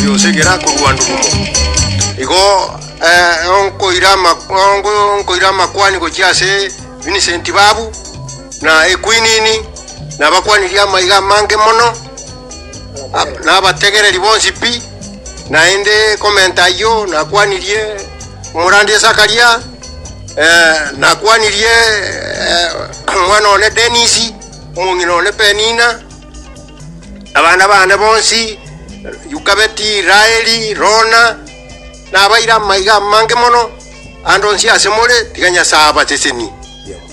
yonsi egere akorua ndugumo igo eh, onkoira ama- onko- onkoira amakwani gochia ase Vincent babu na ekwinini nabakwanirie amaiga amange mono Ab- nabategereri bonsi pi naende komenta ayio nakwanirie omorandire sakaria eh, nakwanirie eh, omwana one denisi omong'ina one penina Abana bane bonsi, Yukabeti, Raeli, Rona, nabaire amaiga amange mono, ande onsi ase more, tiga Nyasae abasesenie.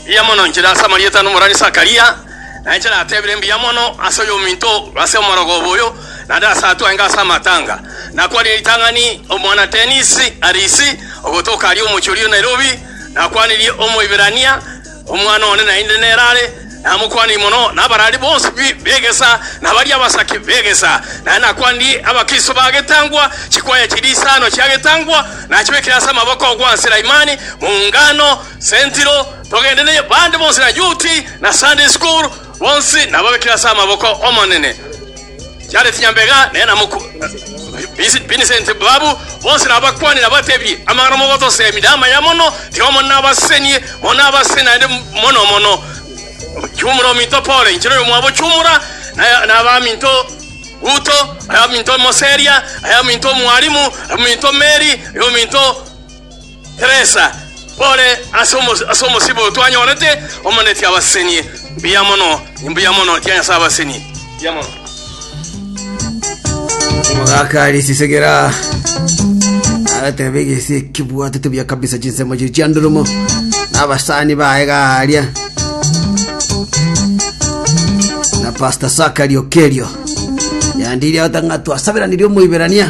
Mbuya mono inchera ase amarieta ande omorwani Zakaria, na inche natebire mbuya mono ase oyominto oo, ase omorogoba oyo, naende ase atwenge ase amatanga. Nakwanire ritang'ani omwana Dennis Arisi, ogotoka aria omochie oria o Nairobi, nakwanirie Omoibirania, Omwana one naende nere are namokwanire mono nabarari bonsi b'egesa, na baria abasake b'egesa. Naende nakwanire Abakristo ba getangwa chikwaya chiria isano chia getangwa, nachibekire ase amaboko gwa Selaimani, Muungano, Sentiro, Togende ne Bande Bonsi na Yuti na Sunday School, bonsi nababekire ase amaboko 'Omonene. Chiare chinyambega nere na mokwa Bisi- Vincent babu bonsi nabakwane nabatebirie, Amang'ana mogotosemia namaya mono, tiga mono nabasesenie, mono nabasesenie naende mono mono. Chumura ominto Pole, inche noyo mwabo Chumura, na- nabaminto Ruto, abaminto Moseria, abaminto Mwalimu, abaminto Mary, abaminto Teresa, ore ase omo- ase omosibwa otwanyorete, omonetie abaseni. Mbuya mono, mbuya mono, chia Nyasae abaseni. Mbuya mono. omogaka risisegera agateba egese ekebwatete buya kabisa chinsemo chiri chiandoromo na abasani baye garia na pastor sakari okerio yandiria otanga twasaberanirie omoiberania